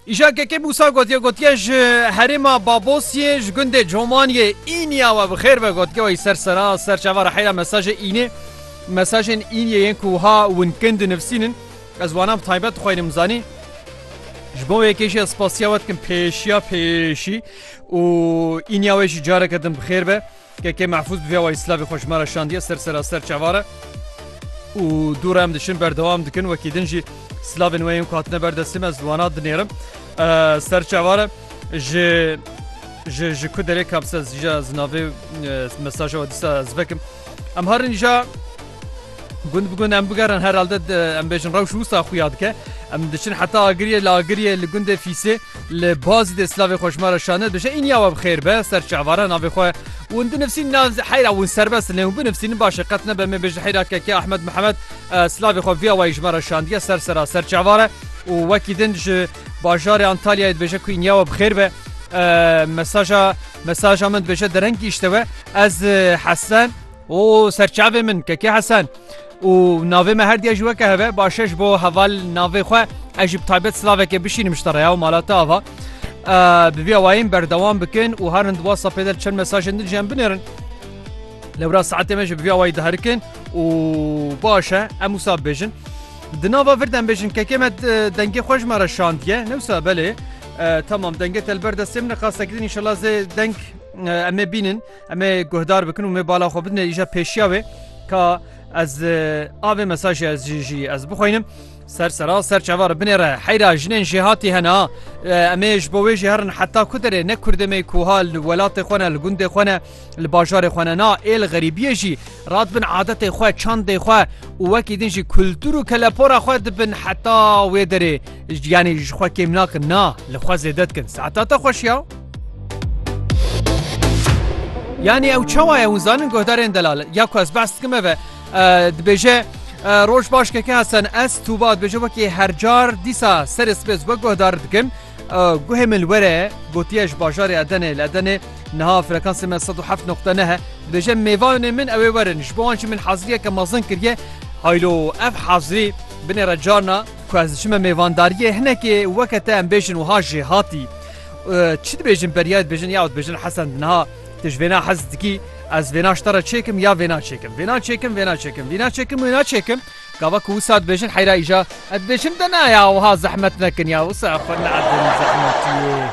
Îşa kekê Musa gotiye gotiye ji herêma Babosiyê ji gundê Comaniyê îniya we bi xêr ve gotiye wî ser sera ser çava re heyra mesajê înê mesajên îniye yên ku ha winkin di nivsînin ez wanan taybet dixwînim zanî ji bo yekê jî ez spasiya we dikim pêşiya pêşî û îniya wê jî careke din bi xêr be Kekê Mehfûz bi vê awayî silavê xwe ji me re şandiye ser seraser çavare û dû re em diçin berdewam dikin wekî din jî silavên wê yên ku hatine ber destê me ez wana dinêrim ser çavare ji ji ji ku derê kabse zîja zinavê mesaja we dîsa ez vekim em harin îja Gund bi gund em bigerin herhalde em bêjin rewş wisa xuya dike. Em diçin heta agiriyê li agiriyê li gundê fîsê li bazî dê silavê xweşmara şanê dibêje îniya we bi xêr be ser çavara navê xwe û di nifsîn na heyra wûn serbest lê û binifsînin başê qet nebe me bêje heyra keke Ahmed Mihemed silavê xwe viya wayî ji me re şandiye ser sera ser çavare û wekî din ji bajarê Antalyayê dibêje ku îniya we bi xêr be mesaja mesaja min dibêje derengî îşte we ez hesen O serçavê min Kekê Hesen û navê me herdiya ji weke heve başe ji bo heval navê xwe ez jî bi taybet silavekê bişînim ji te reya û malate ava bi vî awayên berdewam bikin û herin di WhatsAppê de çend mesajên din jiyem binêrin lewra saetê me ji bi vî awayî diherikin û baş e em wisa bêjin di nava vir dem bêjin kekê me dengê xwe ji me re şandiye newsa belê tamam dengê telber destê min qastekidin inşallah zê deng em ê bînin Em ê guhdar bikin û mê bala xwe bidin îja pêşiya wê ka ez avê mesajê ez jî jî ez bixwînim. Ser sera ser çevar binê re heyra jinên jê hatî hena em ê ji bo wê jî herin heta ku derê ne kurdê me kuha li welatê xwe ne li gundê xwe ne li bajarê xwe ne na êl xerîbiyê jî rat bin adetê xwe çandê xwe û wekî din jî kultur û kelepora xwe dibin heta wê derê Ji giyanê jî ji xwe kêm nakin na li xwe zêde dikin saeta te xweş ya. Yanî ew çawa ye hûn zanin guhdarên delal ya ku ez behs dikim eve dibêje roj baş keke hesen ez tûba dibêje wekî hercar dîsa serê sibê zbe guhdar dikim guhê min were gotiye ji bajarê edenê li edenê niha frekansê me 107 noqte nehe dibêje mêvanê min ewê werin ji bo an jî min haziriyeke mezin kiriye haylo ev hazirî binê re carna Ku ez diçime mêvandariyê hinekê weke te em bêjin wiha jê hatî. Çi dibêjin beriyayê dibêjin ya dibêjin Hesen niha tu ji vêna hez dikî ez vêna ji te re çêkim ya vêna çêkim vêna çêkim vêna çêkim vîna çêkim wêna çêkim gava ku wisa dibêjin heyra îja ez dibêjin te ne ya wiha zehmet nekin ya wisa xwe needin zehmetiyê.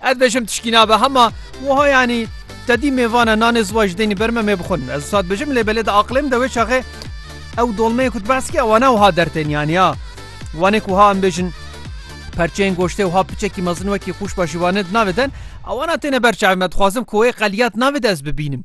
Ez dibêjim tişkî nabe hema wiha yanî tedî mê vane nanê ziwa ji deynî ber me mê bixwin. Ez wisa dibêjim lê belê di aqilê min de wê çaxê ew dolmeyê ku tu behs dikî ewa ne wiha dertên yanî ya wanê ku wiha em bêjin perçeyên goştê wiha piçekî mezin wekî qûşba şîvanê di navê de ne ewana têne ber çavê me. Dixwazim ku wê qeliyat navê de ez bibînim.